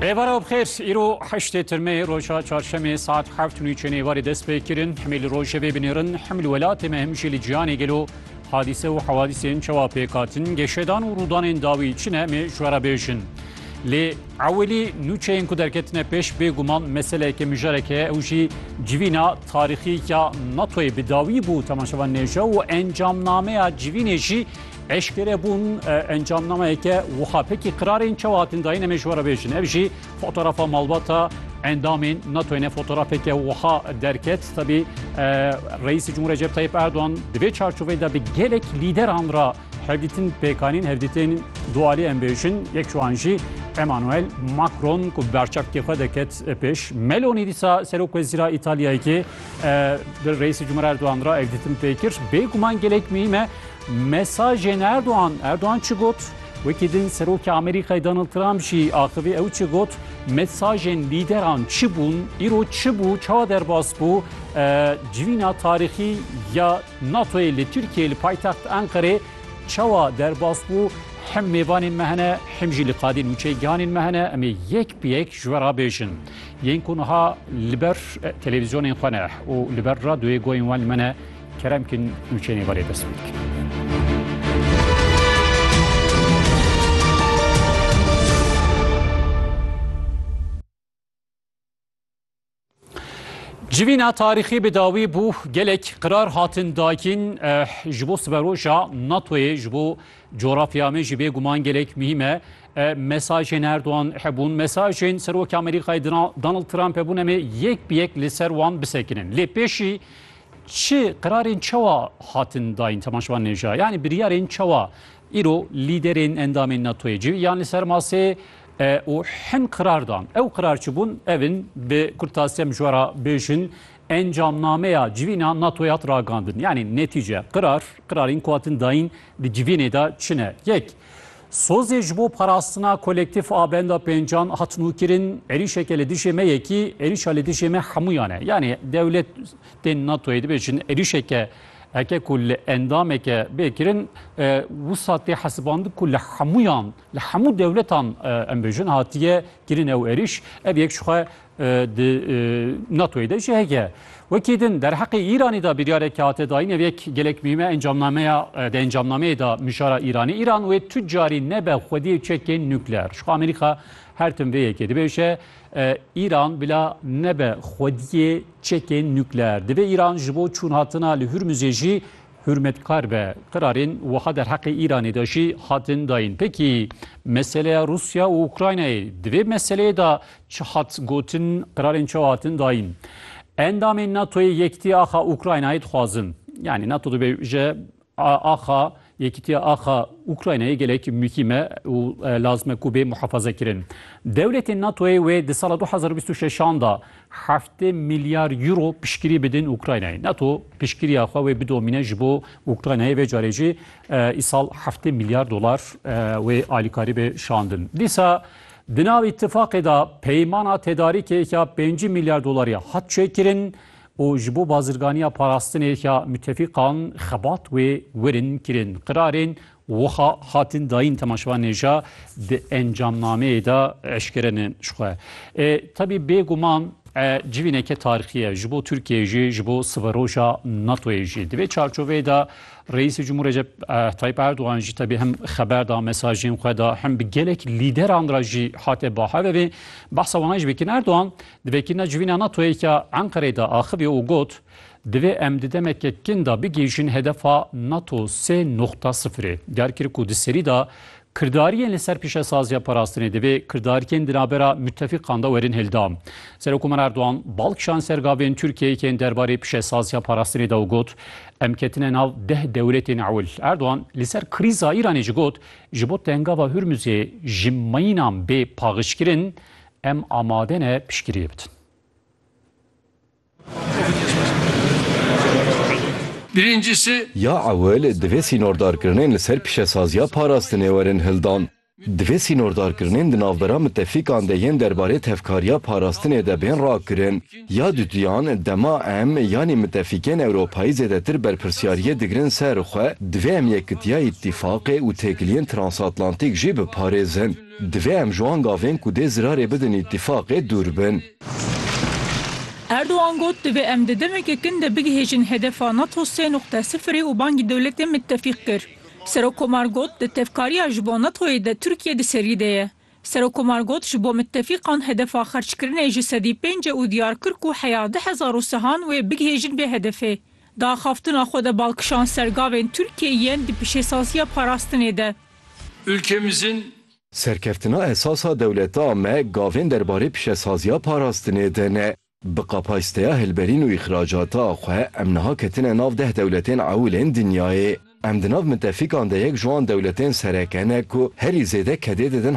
Rêbara bixêr îro heştê tirmê roja çarşemê saet heft nû çênê varê dest pê kirin himê li rojê vê binêrin him li welatê me him jî li ciyanê gelo hadîse û hewadîsên çawa pêkatin geşedan û rûdanên dawî çi ne mê ji wera bêjin. Lê ewilî nû çeyên ku derketine pêş bêguman meseleke mijareke ew jî civîna tarîxî ya NATOyê bi dawî bû temaşevan nêje û encamnameya civînê jî Eşkere bûn encamnameyeke wiha pekî qirarên çawa hatin dayîn em ê ji we re bêjin. Ev jî fotografa malbata endamên NATO'yê ne fotografeke wiha derket. Tebî Reîsê Cumhur Recep Tayyip Erdogan di vê çarçoveyê de bi gelek lîderan ra hevdîtin pêkanîn hevdîtên dualî em bêjin. Yek ji wan jî Emmanuel Macron ku bi berçavkê xwe deket pêş. Meloni dîsa Serok Wezîra Îtalyayê bi Reîsê Cumhur Erdogan ra hevdîtin pê kir. Bêguman gelek muhîm e. Mesajên Erdogan, Erdogan çi got? Wekî din Serokê Amerîkayê Donald Trump jî axivî ew çi got? Mesajên lîderan çi bûn? Îro çi bû? Çawa derbas bû? Civîna tarîxî ya NATOyê li Tirkiyeyê li paytext Enqerê çawa derbas bû? Him mêvanên me hene, him jî li qadên û çêgihanên me hene. Em ê yek bi yek ji we re bêjin. Yên ku niha li ber televîzyonên xwe ne û li ber radyoyê goyên wan li me ne, Kerem kin û çênê verê dest pê Civîna tarîxî bi dawî bû gelek qirar hatin dakîn eh, ji bo siberoja NATOyê ji bo coğrafya me jî bêguman gelek muhîm e. Eh, mesajên Erdogan hebûn, mesajên Serokê Amerîkayê Donald Trump hebûn em ê yek bi yek li ser wan bisekinin. Lê pêşî Çi qirarên çawa hatin dayîn temaşvan nêja yanî biryarên çawa îro lîderên endamên NATOyê civî yan li ser masê û hin qirar dan. Ew qirar çi bûn ev in bi kurtasîya min ji we re bêjin encamnameya civîna NATOyê hat ragandin. Yanî netîce qirar qirarên ku hatin dayîn di civînê de çi ne? Yek Sozê ji bo parastina kolektîf a benda pêncan hat nûkirin, êrîşeke li dijê me yekî, êrîşa li dijê me hemûyan e. Yanî dewlet tên NATO'yê dibêjin êrîşeke eke ku li endameke bê kirin, wisa tê hesibandin ku li hemûyan, li hemû dewletan em bêjin hatiye kirin ew êrîş. Ev yek ji xwe Di NATOyê de jî heke. Wekî din derheqê Îranî de biryareke hate dayîn ev yek gelek muhîme encamnameya di encamnameyê de mijara Îranê Îran wê tu carî nebe xwediyê çekên nukleer. Jixwe Amerîka her tim vê yekê dibêje Îran bila nebe xwediyê çekên nukleer. Divê Îran ji bo çûnhatina li Hurmuzê jî Hurmetkar be, qirarên wiha derheqê Îranê de jî hatin dayîn. Pekî meseleya Rûsya û Ukraynayê, di vê meseleyê de çi hat gotin, qirarên çawa hatin dayîn? Endamên NATOyê yekitî axa Ukraynayê dixwazin. Yanî NATO dibêje axa yekîtiya axa Ukraynayê gelek muhîm e û lazim e ku bê muhefazekirin. Dewletên NATOyê wê di sala du hezar û bîst û şeş an de Heftê milyar euro piştgirî bidin Ukraynayê. Nato piştgiriya xwe wê bidomîne ji bo Ukraynayê vê carê jî îsal heftê milyar dolar wê alîkarî be şandin. Dîsa di nav îtîfaqê de peymana tedarîkê ya pêncî milyar dolarî hat çêkirin û ji bo bazirganiya parastinê ya mitefîqan xebat wê werin kirin. Qirarên Wiha hatin dayîn temaşevan nêja di encamnameyê de eşkere ne ji xwe. E, Tebî bêguman e, civîneke tarîxî ye ji bo Tirkiyeyê jî ji bo siveroja NATOyê jî. Di vê çarçoveyê de Reîsê Cumhur Recep e, Tayyip Erdogan jî tebî hem xeber da mesajên xwe da hem bi gelek lîderan ra jî hate bahevevê. Behsa wana jî bikin Erdogan di vekirina civîna NATOyê ke Enqereyê de axivî û got Divê em di demeke kin de bigihîjin hedefa nato sê noxta sifirê. Diyar kir ku di serî de kirdariyên li ser pîşesaziya parastinê divê kirdariyên di navbera mutefîqan de werin hildan. Serokkomer Erdogan bal kişand ser gavên Tirkiyeyê yên derbarê pîşesaziya parastinê de û got, Em ketine nav deh dewletên ewil. Erdogan li ser krîza Îranê jî got, Ji bo tengava Hurmuzê ji mînan bê paxijkirin, em amade ne piştgiriyê bidin. Ya ewil divê sînordarkirinên li ser pîşesaziya parastinê werin hildan. Divê sînordarkirinên di navbera mitefîkan de yên derbarê tevkariya parastinê de bên rakirin. Ya duduyan, dema em yanî mitefîkên Ewropayî zêdetir berpirsyariyê digirin ser xwe, divê em yekitiya îtîfaqê û têkiliyên transatlantîk jî biparêzin. Divê em ji wan gavên ku dê zirarê bidin îtîfaqê dûr bin. Erdogan got, Divê em di demeke kin de bigihêjin hedefa nato sê nuqte sifirê û bangî dewletên mitefîq kir. Serokkomar got, Di tevkariya ji bo NATO'yê de Tirkiye di serî de ye. Serokkomar got, Ji bo mitefîqan hedefa xerckirinê ji sedî pênc e û diyar kir ku heya du hezar û sehan wê bigihêjin vê hedefê. Di axaftina xwe de bal kişand ser gavên Tirkiyeyê yên di pişêsaziya parastinê de. Ülkemizin Serkeftina esas a dewleta me gavên derbarê pişesaziya parastinê de ne. Bi kapasiteya hilberîn û îxracata xwe em niha ketine nav deh dewletên ewil ên dinyayê. Em di nav mitefîkan de yek ji wan dewletên sereke ne ku herî zêde kedê didin